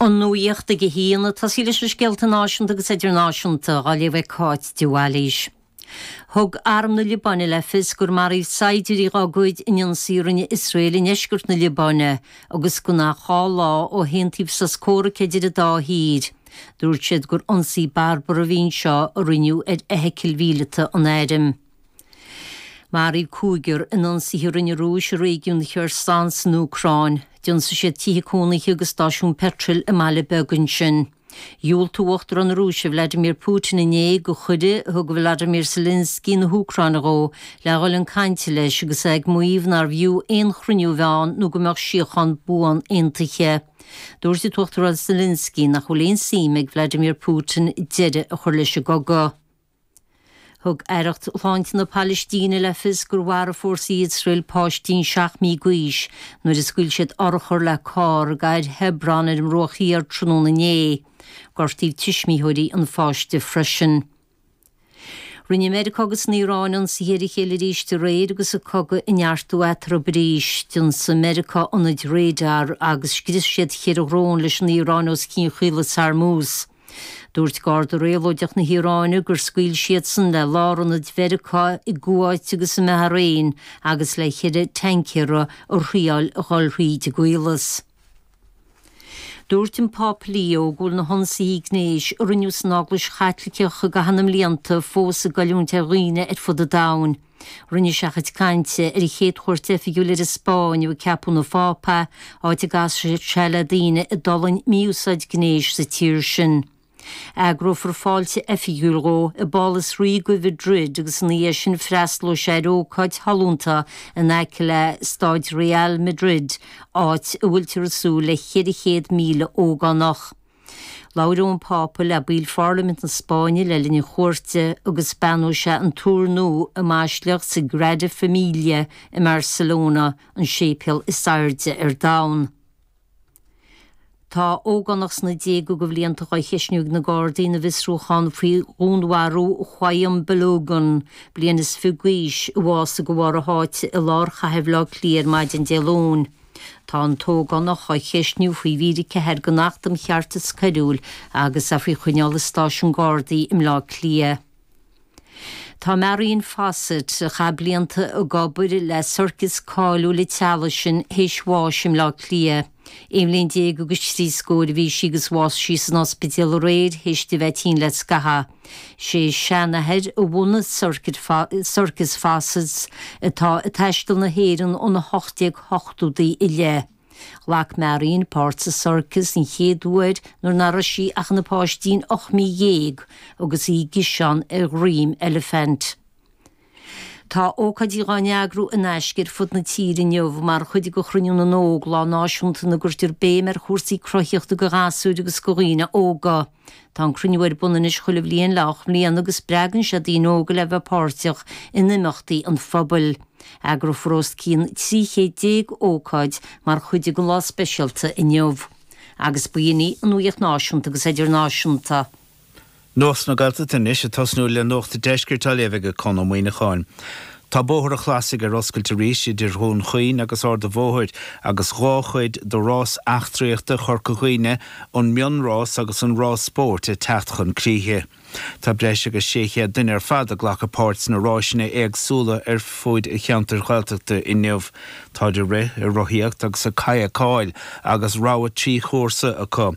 An nuaíocht ag a haon. Tosóidh muid leis na scéalta náisiúnta agus idirnáisiúnta á léamh ag Cáit de Bhailís. Thug Arm na Liobáine le fios gur maraíodh saighdiúirí dhá gcuid in ionsaí a rinne Iosrael i ndeisceart na Liobáine agus gan ach dhá lá ó haontaíodh sos comhraic idir an dá thír. Dúirt siad gur ionsaí barbartha a bhí anseo a rinneadh ar fheithicil mhíleata an Airm. Maraíodh cúigear in ionsaithe a rinne an Rúis i réigiún Kherson san Úcráin. D'ionsaigh siad tithe cónaithe agus stáisiún peitril i mbaile beag ansin. Dhiúltaigh Uachtarán na Rúise Vladimir Putin inné do chuireadh a thug Volodymyr Zelensky na hÚcráine dhó le dhul chun cainte leis agus é ag maíomh nárbh fhiú aon chruinniú a bheith ann nó go mbeadh síochán buan aontaithe. Dúirt Uachtarán Zelensky nach bhfuil aon suim ag Vladimir Putin deireadh a chur leis an gcogadh. Thug Aireacht Shláinte na Palaistíne le fios gur mharaigh fórsaí Iosrael páistín seacht mí d'aois nuair a scaoil siad urchar le carr i gcathair Hebron ar an mBruach Thiar tráthnóna inné. Gortaíodh tuismitheoirí an pháiste freisin. Rinne Meiriceá agus an Iaráin ionsaithe ar a chéile arís aréir agus an cogadh ag neartú eatarthu arís. D'ionsaigh Meiriceá ionaid radair agus scrios siad ceithre dhrón leis an Iaráin os cionn Chaolas Hormuz. Dúirt Garda Réabhlóideach na hIaráine gur scaoil siadsan le lárionaid Mheiriceá i gCuáit agus i mBahrain agus le cheithre thancaer a thriáil a dhul thríd an gCaolas. Dúirt an Pápa Leo go bhfuil na hionsaithe gnéis a rinneadh san Eaglais Chaitliceach i gcaitheamh na mblianta fós ag goilliúint ar dhaoine ar fud an domhain. Rinne sé a chuid cainte ar a chéad chuairt oifigiúil ar an Spáinn ó ceapadh ina Phápa, áit a gcasfaidh sé le daoine a d'fhulaing mí-úsáid gnéis sa tír sin. Eagrófar fáilte oifigiúil dhó i bPálas Ríoga Mhaidrid agus ina dhiaidh sin freastalóidh sé ar ócáid shollúnta in aice le Stáid Real Madrid, áit a bhfuiltear ag súil le 400,000 ógánach. Labhróidh an Pápa le baill Pharlaimint na Spáinne le linn a chuairte agus beannóidh sé an túr nua i mBaisleac Sagrada Familia i mBarcelona, an séipéal is airde ar domhan. Tá ógánach sna déaga de bhlianta á cheisniú ag na Gardaí ina bhfiosrúchán faoi dhúnmharú Qayyum Balogun, bliain is fiche d'aois, a bhásaigh de bharr a sháite i lár chathair Bhaile Átha Cliath ar maidin Dé Luain. Tá an t-ógánach á cheistniú faoi mhír 4 den Acht um Cheartas Coiriúil agus é faoi choinneáil i Stáisiún Gardaí i mBleá Cliath. Tá Marion Fossett, a chaith blianta ag obair le sorcas cáiliúil an teaghlaigh sin, théis bháis i mBleá Cliath. Aon bhliain déag agus trí scór a bhí sí agus bhásaigh sí san ospidéal aréir théis di bheith tinn le scaitheamh. Is é a seanathair a bhunaigh Circus Fossett's atá ag taisteal na hÉireann ó na 1880idí i leith. Ghlac Marion páirt sa Circus den chéad uair nuair ná raibh sí ach ina páistín 18 mí agus í i gciseán ar dhroim eilifint. Tá ócáidí dhá n-eagrú in aisce ar fud na tíre inniu mar chuid de Chruinniú na nÓg, lá náisiúnta ina gcuirtear béim ar chúrsaí cruthaitheachta do ghasúir agus do dhaoine óga. Tá an cruinniú ar bun anois chuile bhliain le hocht mbliana agus spreagann sé daoine óga le bheith páirteach in imeachtaí an phobail. Eagrófar os cionn trí chéad déag ócáid mar chuid den lá speisialta inniu agus bainfidh an uaíocht náisiúnta agus idirnáisiúnta. Nuacht na Gaeltachta anois ag tosnú le Nuacht an Deiscirt á léamh ag Conn Ó Muíneacháin. Tá Bóthar an Chlasaigh ar oscailt arís idir Dún Chaoin agus Ard a Bhóthair agus dhá chuid do rás eachtraíochta Chorca Dhuibhne, an Mion Rás agus an Rás Spóirt ag teacht chun críche. Tá breis agus 600 duine ar fad ag glacadh páirt sna ráiseanna éagsúla ar fuaid an cheantair Ghaeltachta inniu. Táid ag rith, ag rothaíocht agus ag kayakáil agus rogha trí chúrsa acu.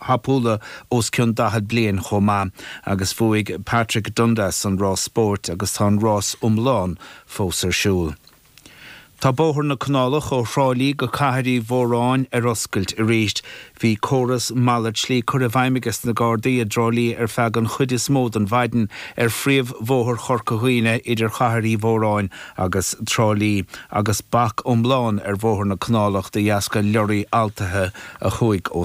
tapúla os cionn 40 bliain chomh maith agus bhuaigh Patrick Dundas an Rás Spóirt agus tá an rás iomlán fós ar siúl. Tá bóthar na Canálach ó Thrá Lí go Cathair Uí Mhóráin ar oscailt arís. Bhí córas malairt slí curtha i bhfeidhm ages na Gardaí i dTrá Lí ar feadh an chuid is mó den mhaidin ar phríomh bhóthar Chorca Dhuibhne idir Chathair Uí Mhóráin agus Trá Lí agus bac iomlán ar bhóthar na Canálach de dheasca leoraí altaithe a chuaigh ó